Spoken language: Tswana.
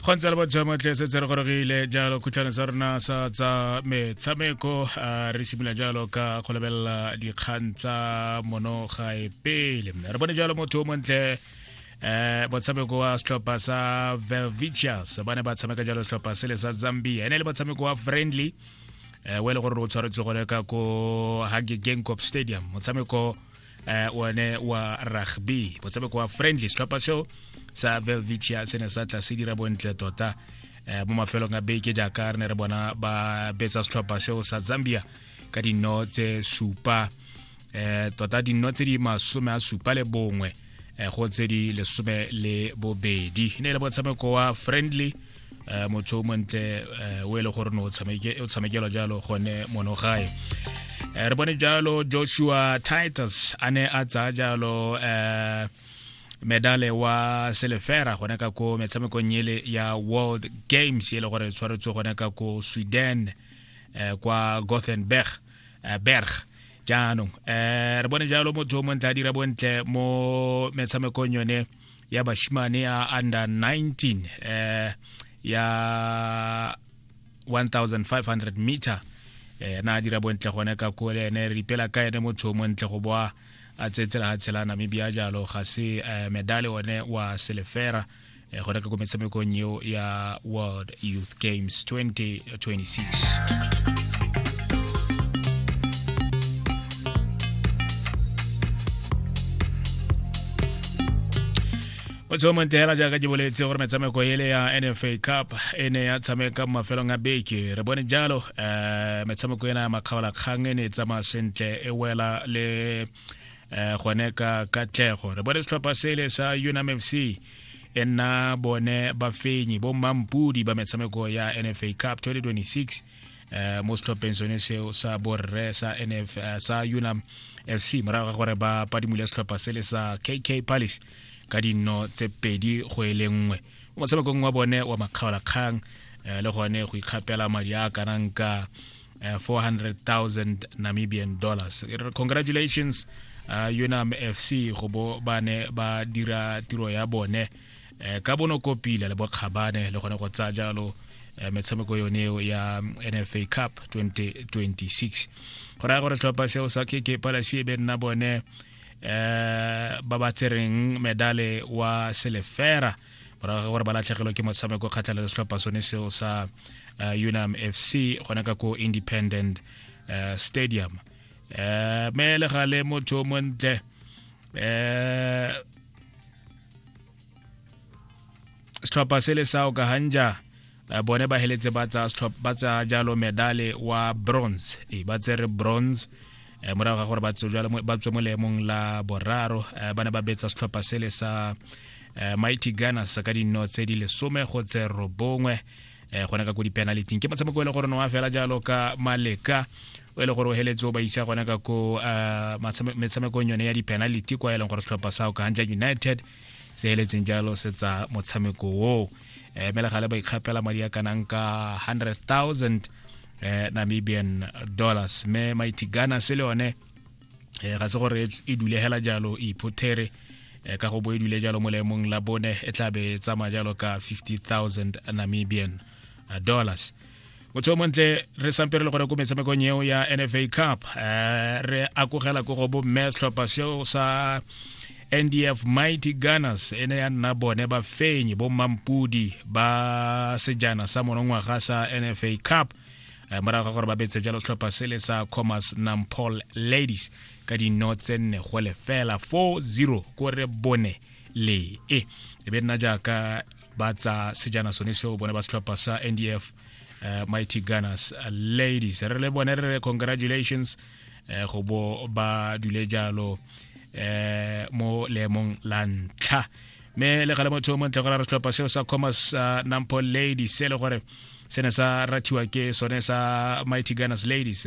go ntse le bojamatle se tse re gorogile jalo khutlhane sa rona sa tsa metshameko a re simolola jalo ka go lebelela dikgang tsa mono gae pele re bone jalo motho o montle um motshameko wa setlhopha sa velvicius ba ne ba tshameka jalo setlhopha sele sa zambia e ne le motshameko wa friendly um o e le gore o tshwaretse gone ka ko hage gangcop stadium motshameko eh one wa rugby motshameko wa friendly setlhopha seo sa velvicia se ne sa tla se dira bontle tota eh mo mafelong a beke jaaka re ne re bona ba betsa setlhopha seo sa zambia ka dino tse supa eh tota dino tse di masome a supa le bongwe eh, go tse di lesome le bobedi e ne e le motshameko wa friendly um motho o montle um o e le gore ne o tshamekelwa jalo gone mono gae um re bone jalo joshua titus a ne a tsaya jalo um medale wa selefera gone ka ko metshamekong ele ya world games e le gore e tshwaretswe gone ka ko sweden um kwa gothenberg um berg jaanong um re bone jalo motho o montle a dira bontle mo metshamekong yone ya bashimane ya under 19 eh, ya 1500 meter eh, na a dira bontle gone ka ko le ene re ipela ka ene motho o montle go boa a tsetsela ga tshela namibia jalo ga se eh, medale one wa selefera eh, gone ka ko metshamekong eo ya world youth games 20 motho o montela jaaka ke boletse gore metshameko ele ya nfa cup e ne ya tshameka mo mafelong a beke re bone jalo um metshameko ena ya makgaolakgang e ne e tsamaya sentle e wela le um gone ka katlego re bone setlhopha sele sa unam f c e nna bone bafenyi bo mampudi ba metshameko ya nfa cup 2026 eh, mo setlhopheng sone seo sa borre sa nf eh, sa unam fc morago ga gore ba padimule setlhopha se le sa kk palace ka dinno tse pedi go e le nngwe mo motshamekong wa bone wa makgaolakgang eh, le gone go ikgapela madi a kanang ka uh, eh, 400,000 Namibian dollars congratulations uh, Unam FC go bo ba ne ba dira tiro ya bone uh, ka bono kopile le bokgabane le gone go tsaya jalo uh, metshameko yone eo ya NFA Cup 2026 go raya gore tlhopha seo sa KK Palace e be nna bone uh, ba ba tsereng medale wa selefera morago ga gore ba latlhegelwe ke motshameko kgatlhanong le setlhopha sone seo sa uh, unam fc gona ka ko independent uh, stadium uh, me le gale motho o montle uh, setlhopha se le sa okahanja Eh, bone ba heletse ba tsa ba tsa jalo medale wa bronze e ba tsere bronze eh, morago ga gore ba tswe mo leemong la boraro eh, ba ne ba betsa setlhopha sele sa mighty gunners ka dino tse di lesome go tse robongwe go ne ka ko dipenaliting ke motshameko e le gore ne wa fela jalo ka maleka o e le gore o heletse o ba isa gone ka ko metshamekong yone ya dipenality kwa e leng gore setlhopha sa o ka hanja united se eletseng jalo se tsa motshameko oo eh, mme le gale ba ikgapela madi a kanang ka 100,000 eh, namibian dollars mme mighty ghana se le yone eh, ga se gore e dule hela jalo e iphotere eh, ka go bo e dule jalo mo leemong la bone e tlabe e tsamaya jalo ka 50,000 namibian eh, dollars motho o montle re sampe re le gore ko metshamekong eo ya nfa cup um re akogela ko go bomme setlhopha seo sa ndf mighty gunners e ne ya nna bone bafenyi bommampodi ba sejana sa monongwaga sa nfa cup eh, morago ga gore ba betse jalo setlhopha se le sa commerce nampol ladies ka dino tse nne go lefela 4-0 ko re bone le e e be nna jaaka ba tsa sejana sone seo bone ba setlhopha sa ndf uh, mighty gunners uh, ladies re le bone re re congratulations uh, go bo ba dule jalo uh, mo leemong la ntlha mme le gale motho o montle gore re setlhopha seo sa commerce uh, nampo ladies se le gore se ne sa rathiwa ke sone sa mighty gunners ladies